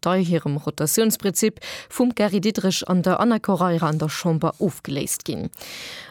dei hirem Rotatiounsprinzip vum Gary Diderich an der Ana Correira an der Chamber ofgeléist ginn.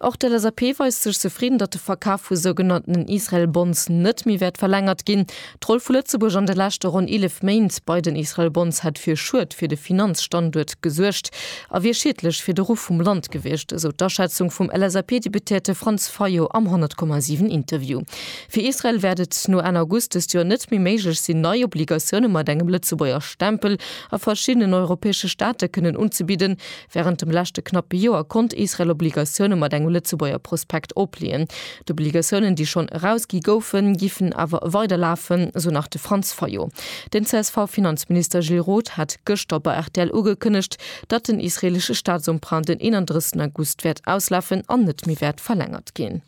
Och d'LSAP weist sech zefridden, datt de Verkaf vu sougenanntenen Israel Bonds net méi wäert verlängert ginn. D'Roll vu Lëtzebuerg an de leschte ronn 11 Méint bei den Israel Bonds hätt fir Schued fir de Finanzstanduert gesuergt a wier schiedlech fir de Ruff vum Land gewiescht, esou d'Aschätzung vum LSAP-Deputéierte Franz Fayot am 100,7 Interview. Fir Israel wäert et no Enn August dëst Joer net méi méiglech sinn, nei Obligatioune mat engem Lëtzebuerger Stempel a verschiddenen europäesche Staate kënnen unzebidden. Wärend dem leschte knappe Joer konnt Israel Obligatioune mat engem Lëtzebuerger Prospekt opleeën. D'Obligatiounen, déi schonn erausgi goufen, giffen awer weider lafen, esou nach de Franz Fayot. Den CSV-Finanzminister Gilles Roth hat gëschter bei rtl ugekënnegt, datt den israeelesche Staatsemprunt den 31 August wäert auslafen an net méi wäert verlängert ginn.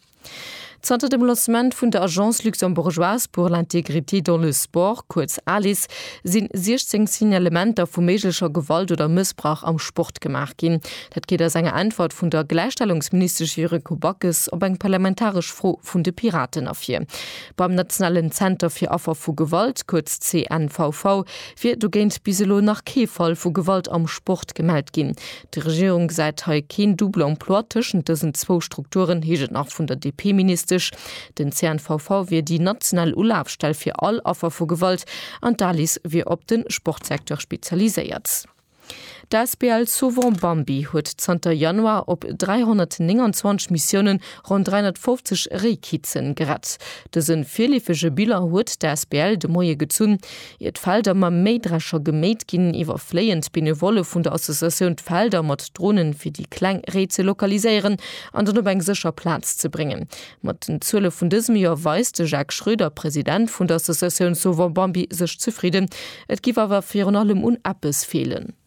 Zanter dem Lancement vun der Agence luxembourgeoise pour l'intégrité dans le sport, kuerz ALIS, si 16 Signalementer vu méiglecher Gewalt oder Mëssbrauch am Sport gemaach ginn. Dat geet aus enger Äntwert vun der Gläichstellungsministesch Yuriko Backes op eng parlamentaresch Fro vun de Piraten ervir. Beim nationalen Zenter fir Affer vu Gewalt, kuerz CNVV, wier dogéint bis elo nach kee Fall vu Gewalt am Sport gemellt ginn. D'Regierung gesäit hei keen double emploi tëschent dësen zwou Strukturen, heescht et nach vun der DP-Ministesch. Den CNVV wier déi national Ulafstell fir all Affer vu Gewalt an d'Alice wier op de Sportsecteur spezialiséiert. D'Asbl Sauvons Bambi huet zanter Januar op 329 Missiounen ronn 350 Réikitzen gerett. Dëse virleefege Bilan huet d'Asbl de Moie gezunn. Ier d'Felder mam Méidrescher geméit ginn, iwwerfléien d'Benevolle vun der Associatioun d'Felder mat Dronen, fir déi kleng Réi ze lokaliséieren an dann op eng sécher Plaz ze bréngen. Mat den Zuele vun dësem Joer weist de Jacques Schroeder, President vun der Associatioun Sauvons Bambi, sech zefridden. Et géif awer virun allem un eppes feelen.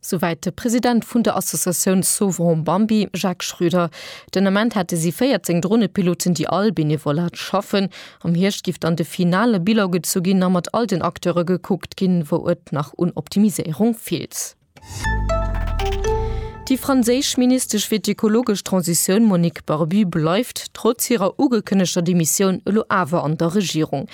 Souwäit de President vun der Associatioun Sauverons Bambi, Jacques Schröder. Den Ament hätte si 14 Dronepiloten, déi all benevolat schaffen. Am Hierscht giff dann de finale Bilan gezu ginn a mat all den Acteure gekuckt ginn, wou et nach un Optimiséierung feelt. Déi franséisch Ministesch fir d'ökologesch Transitioun Monique Barbu bleift trotz hirer ugekënnegter Demissioun elo awer an der Regierung.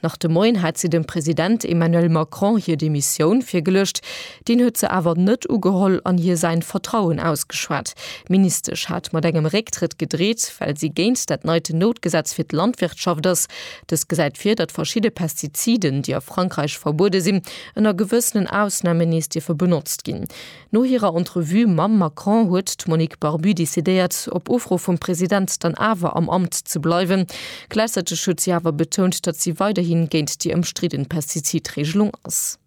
Nach de Moien hat si dem President Emmanuel Macron hir Demissioun virgeluecht. Deen huet se awer net ugeholl an hir säin Vertrauen ausgeschwat. D'Ministesch hat mat engem Récktrëtt gedreet, well si géint dat neit Noutgesetz fir d'Landwirtschaft ass. Dëst gesäit vir, datt verschidde Pestiziden, déi a Frankräich verbuede sinn, ënner gewëssenen Ausnamen nees dierfe benotzt ginn. No hirer Entrevue mam Macron huet d'Monique Barbu decidéiert, op Ufro vum President dann awer am Amt ze bleiwen. Gläichzäiteg huet si awer betount, datt si weiderhi géint déi ëmstridden Pestizidreegelung ass.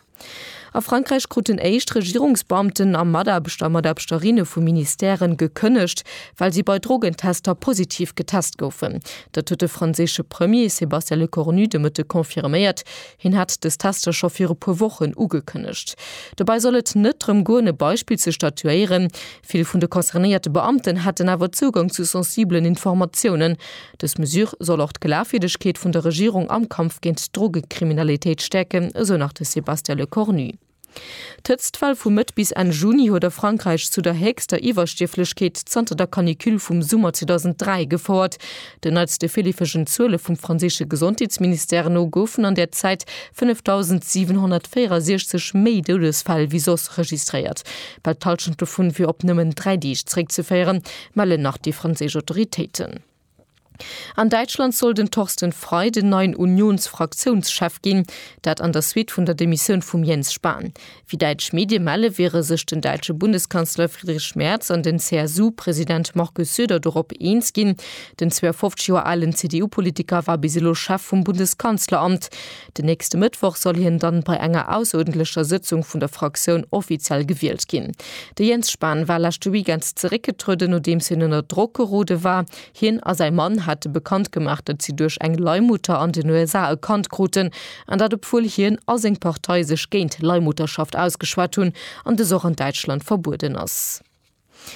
A Frankräich kruten éischt Regierungsbeamten a Mataarbechter a Mataarbchterinne vu Ministèren gekënnegt, well si bei Drogentester positiv getest goufen. Dat huet de franséische Premier Sébastien Lecornu de Mëtte confirméiert. Hien hat dës Tester scho viru puer Wochen ugekënnegt. Dobäi soll et net drëm goen, e Beispill ze statuéieren. Vill vun de concernéierte Beamten hätten awer Zougang zu sensibelen Informatiounen. Dës Mesure soll och d'Glafwierdegkeet vun der Regierung am Kampf géint d'Drogekriminalitéit stäerken, esou nach de Sébastien Lecornu. D'Hëtztwell vu Mëtt bis Enn Juni huet a Frankräich zu der héchster Iwwerstierflechkeet zanter der Canicule vum Summer 2003 gefouert. Den neitste virleefegen Zuele vum franséische Gesondheetsministère no goufen an där Zäit 5.764 méi Doudesfäll wéi soss registréiert. Bal d'Hallschent dovun wier op nëmmen dräi Deeg zeréckzeféieren, mellen nach déi franséisch Autoritéiten. An Däitschland soll den Thorsten Frei den neien Unions-Fraktiounschef ginn, dat an der Suite vun der Demissioun vum Jens Spahn. Wéi däitsch Medie melle, wiere sech den däitsche Bundeskanzler Friedrich Merz an den CSU-President Markus Söder dorop eens ginn. Den 52 Joer alen CDU-Politiker war bis elo Chef vum Bundeskanzleramt. Den nächste Mëttwoch soll hien dann bei enger ausserordentlecher Sëtzung vun der Fraktioun offiziell gewielt ginn. De Jens Spahn war leschte Weekend zeréckgetrueden, nodeems hien ënner Drock gerode war. Hien a säi Mann hate bekannt gemaach, datt si duerch eng Leihmutter an den USA e Kand kruten, an dat obwuel hien a seng Partei sech géint Leihmutterschaft ausgeschwat hunn an dës och an Däitschland verbueden ass.